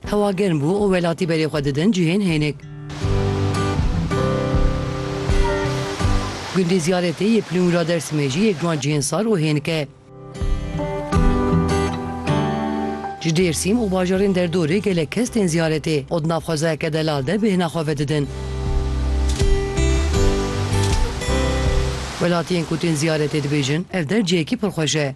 Hewa germ bû û welatî berê xwe didin cihên hênik. Gundê Ziyaretê yê Plûngra Dêrsimê jî yek ji wan cihên sar û hênik e. Ji Dêrsîm û bajarên derdorê gelek kes tên ziyaretê û di nav xwezayeke delal de bêhna xwe vedidin. Welatiyên ku tên ziyaretê dibêjin, Ev der cihekî pir xweş e.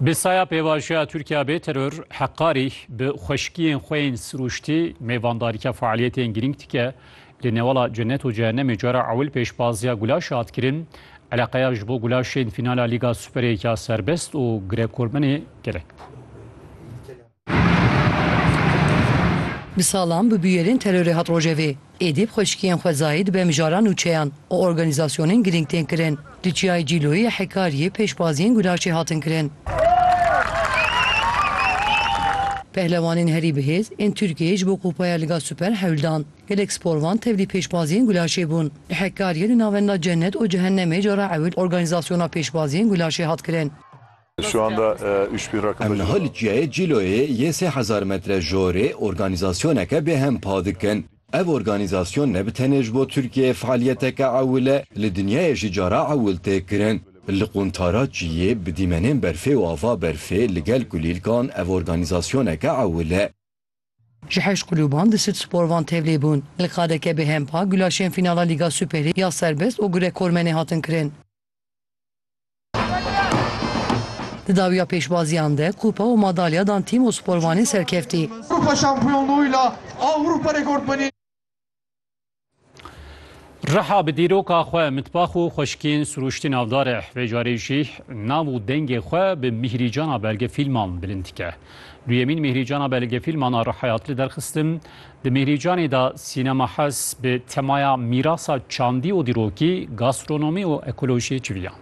Bi saya pêvajoya Tirkiya bê teror heqarî bi xweşkiyên xwe yên sirûştî mêvandarîka faaliyetên girîng dike. Li newala cenet û cehennemê cara ewil pêşbaziya Gulaşê hat kirin. Eleqeya ji bo Gulaşê yên fînala Lîga Superê ya serbest û girekormenê gelek bû. Bi salan bi bûyerên terorê hat rojevê. Êdî bi xweşikiyên xwezayî dibe mijara nûçeyan û organîzasyonên girîng tên kirin. Di Çiyayê Cîloyê yê Hekariyê pêşbaziyên gulaşê hatin kirin. Pehlewanên herî bihêz ên Tirkiyeyê ji bo kupaya Liga Super hewl dan. Gelek sporvan tevlî pêşbaziyên gulaşê bûn. Li Hekariyê di navenda Cennet û Cehennemê cara ewil organîzasyona pêşbaziyên gulaşê hat kirin. Em niha li çiyayê Cîloyê yê sê hezar metre jorê organîzasyoneke bêhem pa dikin. Ev organîzasyon ne bi tenê ji bo Tirkiyeyê fealiyeteke ewil e, li dinyayê jî cara ewil tê kirin. Li quntara çiyê bi dîmenên berfê û ava berfê li gel kulîlkan ev organîzasyoneke ewil e. Ji heşt kulûban di Sud Spor van tevlî bûn. Li qadeke bêhem pa gulaşên fînala Lîga Superê ya serbest û gurekormenê hatin kirin. Di dawiya pêşbaziyan de kupa û madalya dan tîm û sporvanên serkeftî. Kupa Şampiyonluğuyla Avrupa rekortmeni Riha bi dîroka xwe mitbax û xweşikên sirûştî navdar e. Vê carê jî nav û dengê xwe bi mîhrîcana belgefîlman bilind dike. Duyemîn mîhrîcana belgefîlman a Rihayat li derxistim Di Mîhrîcanê de Sînema Hez bi temaya Mîrasa çandî û dîrokî, gastronomî û ekolojiyê civiyand.